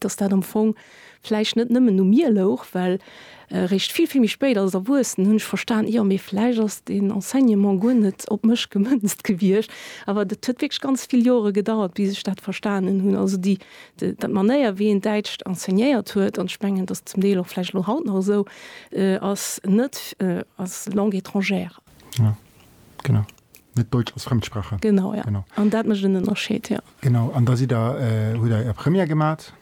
dass dat am Fong vläicht net nëmmen u mir louch, well eréischt vill, vill méi spéit als Erwuessen hunn ech verstan, jo, mee vläicht ass deen Enseignement guer net op mech gemënzt gewiescht. Awer et huet wierklech ganz vill Jore gedauert, bis ech dat verstanen hunn. Also déi, dat Manéier, wéi een Däitscht enseignéiert huet, an ech mengen, et ass zum Deel och vläicht elo haut nach esou, ass net als Langue étrangère. Genau. Net Deutsch als Fremdsprache. Genau, ja. Genau. An dat mécht en Ënnerscheed, ja. Genau. An da sidd Der, hutt Der Är Première gemat?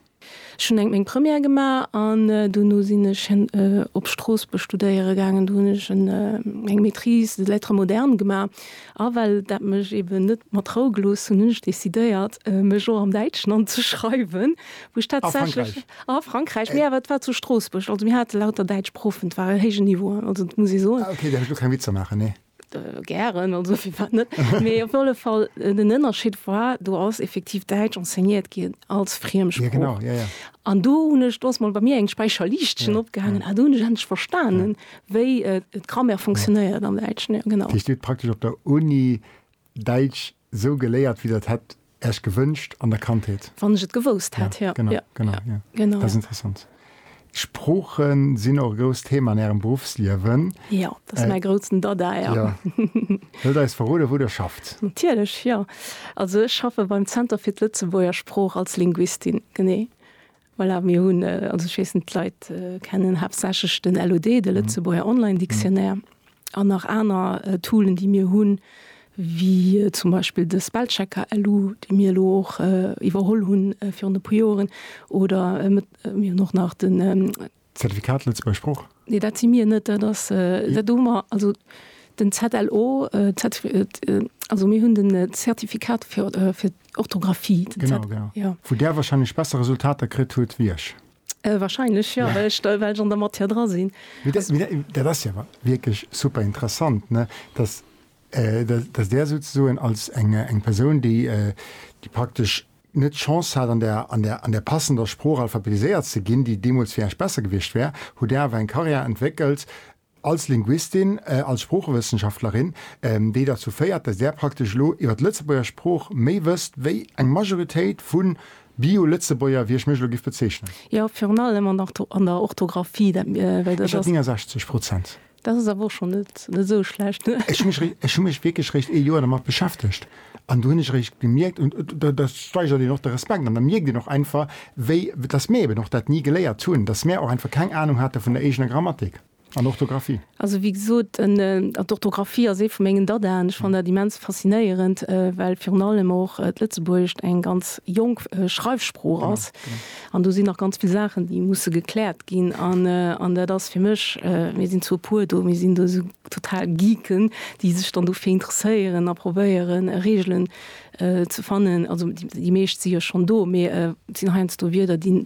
Ech hunn eng meng Première gemaach an dono sinn ech op Stroossbuerg studéiere gaangen. Do hunn ech en eng Maîtrise de lettres modernes gemaach. A well dat mech eeben net mat Rou gelooss hunn, hunn ech decidéiert, mech och am Däitschen anzeschreiwen, wou ech tatsächlech. A Frankräich? A Frankräich, mee awer et war zu Stroossbuerg. Also mir hate lauter däitsch Proffen, et war e héijen Niveau, also dat muss ee soen. Ah, okay, da huet ech elo keng Witzer maachen, nee. Äh, gären, also firwat net? Mee op alle Fall äh, den Ënnerscheed war, do ass effektiv Däitsch enseignéiert ginn als Friemsprooch. Ja, genau, ja, ja. An do hunn ech dos mal bei mir eng Speicherliichtchen ja, opgehangen, ja. a ah, do hunn ech endlech verstanen, ja. wéi äh, d'Grammaire funktionéiert ja. am Däitschen. Ja, genau. Di steet praktesch op der Uni Däitsch sou geléiert, wéi dat hätt Äech gewënscht an der Kandheet? Wann ech et gewousst hätt, jo. Genau, genau, jo. Dat ass interessant. D'Sprooche sinn och e grousst Thema an Ärem Beruffsliewen. Jo, dat ass mäi groutsen Dada, jo. Jo. Wëllt Der eis verroden, wou Der schafft? Natierlech, jo. Also ech schaffe beim Zenter fir d'Lëtzebuerger Sprooch als Linguistin, genee. Voilà, mir hunn, also ech weess net, d'Leit kennen haaptsächlech den LOD, de Lëtzebuerger Online Dictionnaire, an nach aner Toolen, déi mir hunn, wéi zum Beispill de Spellchecker LU, dee mir elo och iwwerholl hunn virun e puer Joren, oder mir hunn och nach den Zertifikat Lëtzebuerg Sprooch? Nee, dat si mir net. Dat ass, dat hu mer, also den ZLO, also mir hunn den Zertifikat fir d'Orthografie. Genau, genau. Jo. Wou Där wahrscheinlech besser Resultater kritt hutt wéi ech. Wahrscheinlech, jo, well ech do, well ech an der Matière dra sinn. Mee dat, mee dat, dat ass jo awer wierklech super interessant, ne, dass, dass Där souzesoen als eng, eng Persoun, déi, déi praktesch net d'Chance hat, an der, an der, an der passender Sprooch alphabetiséiert ze ginn, déi deemools fir Iech besser gewiescht wär, hutt Dir awer eng Karriär entwéckelt als Linguistin, als Sproochewëssenschaftlerin, déi derzou féiert, dass Där praktesch elo iwwer d'Lëtzebuerger Sprooch méi wësst wéi eng Majoritéit vu Bio-Lëtzebuerger, wéi ech mech elo giff bezeichnen. Jo, virun allem an der Orthographie, dat well. Ech hat 69 Prozent. Dat ass awer och schonn net esou schlecht. Ech hu mech wierklech réischt ee Joer dermat beschäftegt an do hunn ech eréischt gemierkt, un da steigert een och de Respekt an da mierkt een och einfach, wéi dass mir eben och dat ni geléiert hunn, dass mir och einfach keng Anung hate vun der eegener Grammatik an Orthografie. Also wéi gesot, d'Orthografie ass ee vu mengen Dadaen. Ech fannen dat immens faszinéierend, well virun allem och d'Lëtzebuergescht eng ganz jonk Schreifsprooch ass. An do sinn nach ganz vill Saachen, déi musse gekläert ginn. An, an dat ass fir mech, mir sinn zwou puer do, mir sinn do esou total Geeken, déi sech dann dofir interesséieren a probéieren Regeln ze fannen. Also déi meescht si jo schonn do, mee et sinn heiansdo Wierder, déi,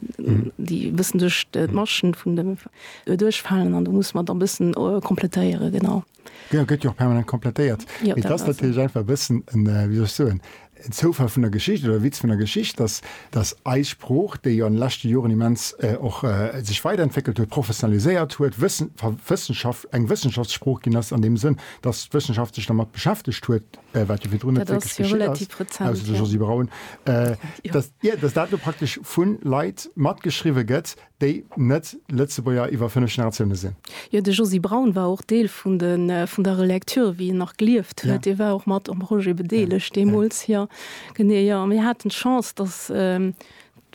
déi e bëssen duerch d'Maschen vun de, duerchfalen. An do musse mer dann e bëssen komplettéieren, genau. Genau, gëtt jo och permanent komplettéiert. Jo, Mee dat ass ass esou. natierlech einfach e bëssen en, äh, wéi soll ech soen, en Zoufall vun der Geschicht oder e Witz vun der Geschicht, dass, dass eis Sprooch, déi jo an de leschte Joren immens, äh, och, äh, sech weiderentwéckelt huet, professionaliséiert huet, wëssen, wa, Wëssenschaft, eng Wëssenschaftssprooch ginn ass an deem Sënn, dass d'Wëssenschaft sech dermat beschäftegt huet, äh, wat jo virdrun net Dat wierklech ass jo geschitt ass, relativ rezent, ausser de jo. Josy Braun, äh, Jo. dass, jo, dass dat elo praktesch vu Leit matgeschriwwe gëtt, déi net Lëtzebuerger iwwer fënnef Generatioune sinn. Jo, de Josy Braun war och Deel vun de, vun der Relecture, wéi en nach gelieft huet. Dee war och mat um Projet bedeelegt deemools. Jo, genee. Jo, a mir haten d'Chance, datt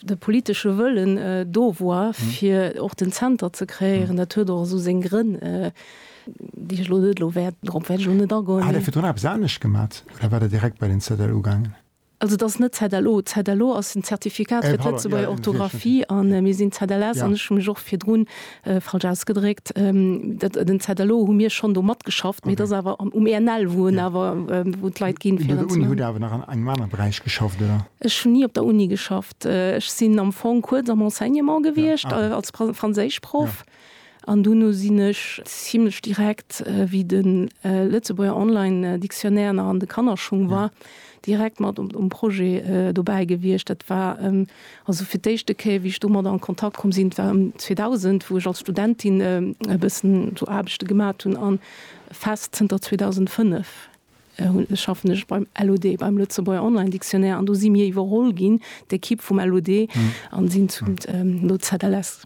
de politesche Wëllen do war, fir och den Zenter ze kreéieren. Dat huet och esou seng Grënn, déi ech elo net, elo wäert, drop wäert ech elo net agoen. Hat Der virdrun eppes anescht gemat oder war Der direkt bei den ZL ugaangen? Also et ass net ZLO. ZLO ass en Zertifikat fir d'Lëtzebuerger Orthografie a mir sinn ZLS an ech hu mech och virdrun falsch ausgedréckt. Den ZLO hu mir schonn do matgeschafft, mee et ass awer um ENL, wou en awer, wou d'Leit ginn fir en ze maachen. Hutt Dir awer nach an engem anere Beräich geschafft, oder? Ech hunn ni op der Uni geschafft. Ech sinn am Fong kuerz am Enseignement gewiescht als Franséischproff. An duerno sinn ech zimlech direkt, wéi de Lëtzebuerger Online Dictionnaire nach an de Kannerschung war, direkt mat um Projet dobäi gewiescht. Dat war also fir d'éischte Kéier, wéi ech domadder an Kontakt komm sinn, war ëm 2000, wou ech als Studentin e bëssen esou Aarbechte gemat hunn. A fest zënter 2005 schaffen ech beim LOD, beim Lëtzebuerger Online Dictionnaire. An do si mir iwwerholl ginn, d'Ekipp vum LOD, a sinn zum, no ZLS.